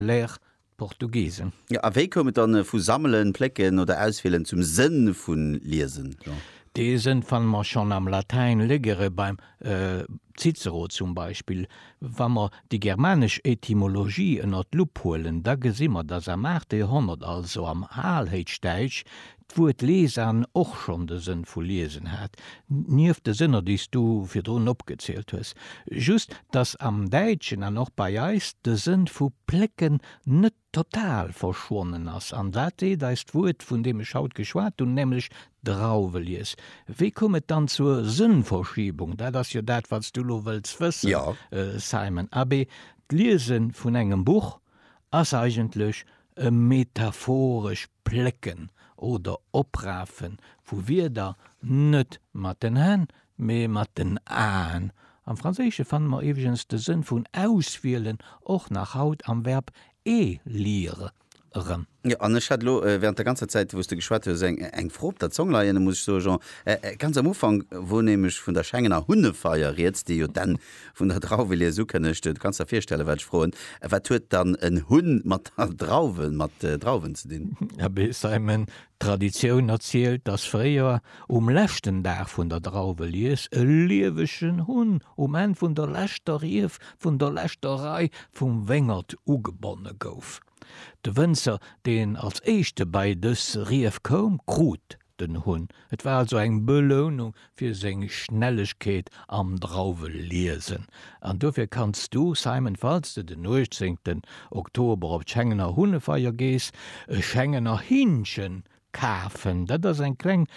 Léer d'Portugiesen. Jo, a wéi koum et dann vu sammelen, plécken oder auswielen zum Sënn vu liesen, Jean? Dee Sënn fanne mer schonn am Latäin, legere beim Cicero zum Beispill. Wa mer déi germanesch Etymologie ënner d'Lupp huelen, da gesi mer, datt am aachte Joerhonnert, also am Alhéichdäitsch, d'Wuert Lesan och schonn de Sënn vu liesen hat, nieft de Sënner, déi s du virdrun opgezielt hues, just datt am Däitschen an och bei eis de Sënn vu plécken net total verschwonnen ass. An wat seet eis d'Wuert, vun deem ech haut geschwat hunn, nämlech Drauwelies? Wéi koum et dann zur Sënnverschiebung? Dat ass jo dat, wat s du elo wëlls wëssen, Simon. Abee, d'Liese vun engem Buch ass eigentlech e metaphoresch Plécken oder Oprafe vu Wierder, net mat den Hänn, mee mat den Aen. Am Franséische fanne mer iwweregens de Sënn vun auswielen och nach haut am Verb élire erëm. Jo, an ech hat elo während der ganzer Zäit, wou s de geschwat hues, eng Fro op der Zong leien, muss ech soe, Jean, ganz am Ufank, wou nämlech vun der Schengener Hunnefeier rieds, déi jo dann Vun der Drauwelies ukënnegt, du kanns der virstellen, wat ech froen, Wat huet dann en Hunn mat Drauwen, mat Drauwen ze dinn? Abee, Simon, d'Traditioun erzielt, datt fréier um leschten Dag vun der Drauwelies e liewegen Hunn um Enn vun der leschter Rief vun der leschter Rei vum Wéngert ugebonne gouf. De Wënzer, deen als éischte bei dës Rief koum, krut den Hunn. Et war also eng Belounung fir seng Schnellegkeet am Drauweliesen. An dofir kanns du, Simon, falls de den 18 Oktober op d'Schengener Hunnefeier gees, e Schengener Hinnchen kafen. Dat ass eng kleng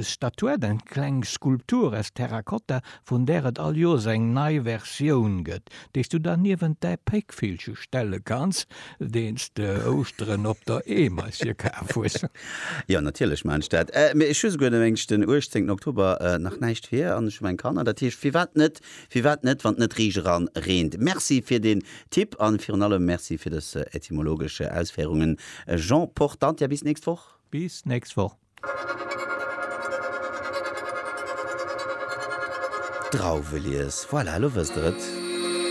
Statuette, eng kleng Skulptur aus Terrakotta, vun där et all Joers eng nei Versioun gëtt. déi's du dann niewent däi Péckvillche stelle kanns, deen's de Ouschteren op der Eemeis fir kaf hues. Jo, natierlech maan ech dat. Mee ech hu souguer de Ménsch den 18 Oktober nach näischt fir an ech hu meng Kanner. Dat heescht, firwat net? Firwat net, wann et net riicht eran reent? Merci fir den Tipp an virun allem Merci fir dës etymologesch Ausféirungen Jean Portante. Bis d'nächst Woch! Bis d'nächst Woch! Drauwelies, voilà, elo wësst der et.